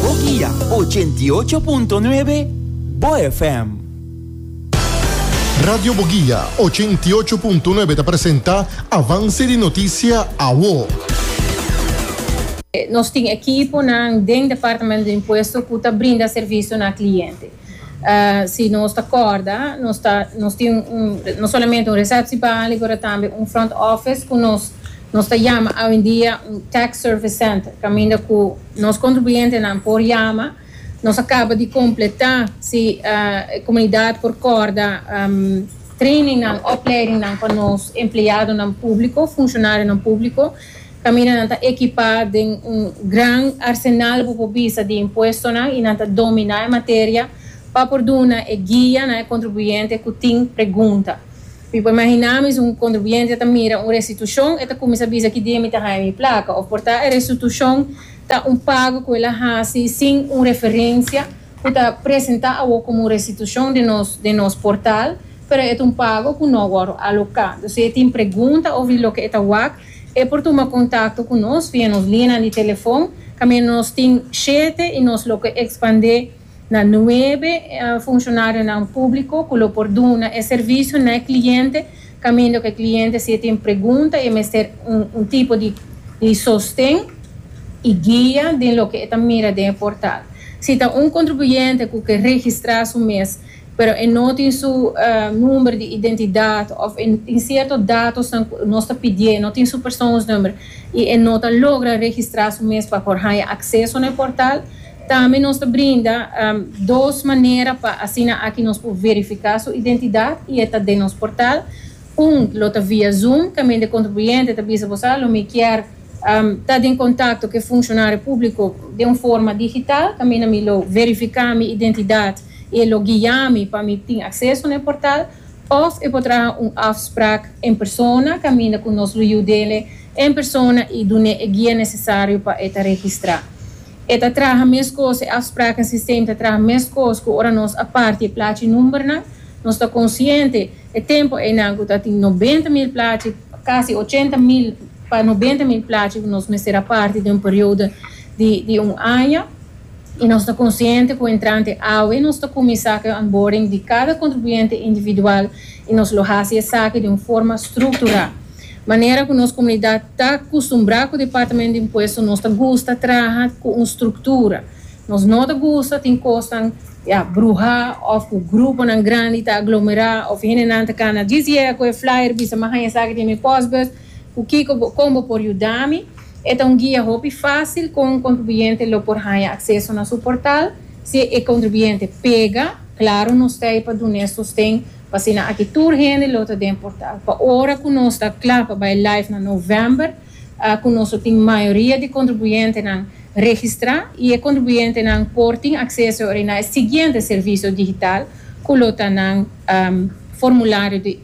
Bo guia ochenta i ocho punto nuebe Bo FM. Radio Bo Guia ochenta i ocho punto nuebe ta presenta Avance di Noticia Awo. Nos tin ekiponan den Departamento di Impuesto cu ta brinda servicio na cliente. Si nos ta kòrda, nos ta nos tin un no solamente un resèpshi bali pero tambe un front office ku nos nos ta yama awendia un tax service center kaminda ku nos kontribuyentenan por yama nos a kaba di kompletá si e komunidat por kòrda trainingnan opleidingnan pa nos empleadonan públiko, funshonarionan públiko. Caminanan ta equipá den un gran arsenal bo por bisa di impuestonan y nan ta dominá e materia pa por duna e guia na e contribuyente cu tin pregunta. Mi por imaginá mi si un contribuyente ta mira un restitucion e ta cuminsa bisa ki dia mi ta haña mi placa of por ta e restitucion ta un pago cu el a haci sin un referencia cu ta presentá awo como un restitucion den nos portal. pero e ta un pago ku no wòr aloká. Dor si e tin pregunta òf di loke e ta wak, e por tuma kontakto ku nos via nos lianan di telefòn, kaminda nos tin shete i nos lo ke ekspandé na nuebe funshonarionan públiko ku lo por duna e servisio na e kliente, kaminda ku e kliente si e tin pregunta i e mester un tipo di sosten i guia den loke e ta mira den e portal. Si ta un kontribuyente ku ke registrá su mes, pero e no tin su number di identidad of e tin cierto datosnan cu nos ta pidié, e no tin su persoonsnumber y e no ta logra registra su mes pa por haya acceso na e portal. Tambe nos ta brinda dos manera pa asina aki nos por verifica su identidad y e ta den nos portal. Un lo ta via Zoom, ta mende contribuyente ta bisa bosa lo mi kier. ta den kontakto ku e funshonarionan públiko den un forma digital, tambe na mi lo verifiká mi identidat i e lo guiami pa mi tin akseso na e portal, òf e por traha un afsprak en persona kaminda ku nos lo yud'e en persona i dun'e e guia nesesario pa e ta registrá. E ta traha meskos, e afsprak den sistema ta traha meskos ku ora nos a parti e plachi numbernan. Nos ta konsiente e tempu einan ku ta tin nobenta mil plachi, kasi ochenta mil. Pa nobenta mil plachi nos mester a parti den un periodo di un aña y nos ta consciente cu entrante awe nos ta cuminsa cu e onboarding di cada contribuyente individual y nos lo haci esaki den un forma structura manera cu nos comunidad ta custumbra cu Departamento di Impuesto nos ta gusta traha cu un structura nos no ta gusta tin cosnan ya bruha of cu gruponan grandi ta aglomera of hendenan ta cana djis dje cu e flyer bisa mi a haña esaki den mi postbus. Cu kico bo, con bo por yuda mi? E ta un guia hopi facil con un contribuyente lo por haya acceso na su portal. Si e contribuyente pega, claro nos ta ey pa dun'e sosten, p'asina aki tur hende lo ta den portal. Pa ora cu nos ta cla pa bay live na november, cu nos lo tin mayoria di contribuyentenan registra y e contribuyentenan por tin acceso na e siguiente servicio digital cu lo ta nan formulario di